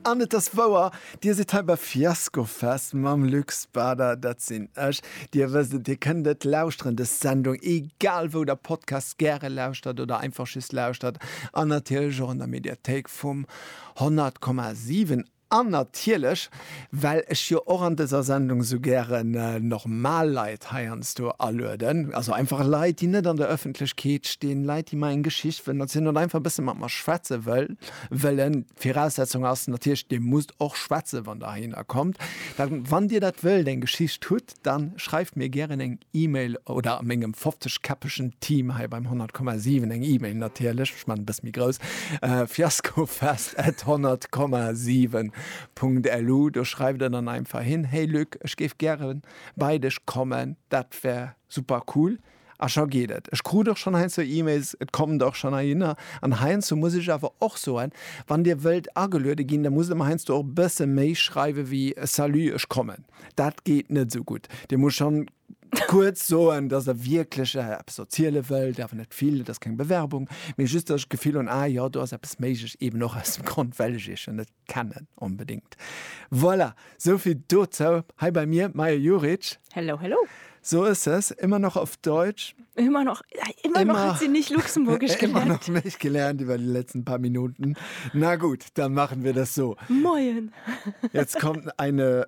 An et ass wouer, Dir sidd hei bei Fiaskofest mam Luc Spader, dat sinn ech. Dir wësst et, Dir kënnt et lauschteren, dës Sendung, egal wou Der Podcasts gäre lauschtert oder einfach just lauschtert, an natierlech och an der Mediathéik vum 100,7. An natierlech, well ech jo och an dëser Sendung esou gären normal Leit heiansdo alueden, also einfach Leit, déi net an der Ëffentlechkeet stinn, Leit, déi mer eng Geschicht wëllen erzielen oder einfach e bësse mat mer schwätze wëllen. D'Viraussetzung ass natierlech, Dir musst och schwätzen, wann Der heihinner kommt. Wann Dir dat wëllt, eng Geschicht hutt, dann schreift mir gären eng Email oder mengem 50 käppegen Team hei beim 100,7 eng Email natierlech, ech maachen e bëssi méi grouss, fiaskofest at 100,7.lu, do schreift der dann einfach hin, Hey Luc, ech géif gären bei dech kommen, dat wär super cool. A scho geet et. Ech krut och schonn heiansdo E-Mails, et kommt och schonn heihinner. An heiansdo muss ech awer och soen, wann Dir wëllt ageluede ginn, da musst Der mer heiansdo och e bësse méi schreiwe wéi Salut, ech kommen. Dat geet net esou gutt. Dir musst schonn kuerz soen, dass Der wierklech eppes erziele wëllt, awer net vill, et ass keng Bewerbung, mee just, dass ech d'Gefill hunn, ah jo, do ass eppes méiglech, eeben och aus dem Grond, well ech Iech jo net kennen onbedingt. Voilà, sou vill dozou. Hei bei mir Maja Juric. Hello, hello. So ist es, immer noch auf Deutsch. Immer noch, immer, immer noch hat sie nicht Luxemburgisch gelernt. Immer noch nicht gelernt über die letzten paar Minuten. Na gut, dann machen wir das so. Moin. Jetzt kommt eine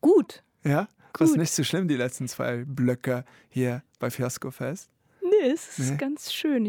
Gut. Ja, das ist nicht so schlimm, die letzten zwei Blöcke hier bei Fiasco Fest. Nee, es ist nee. ganz schön. Ich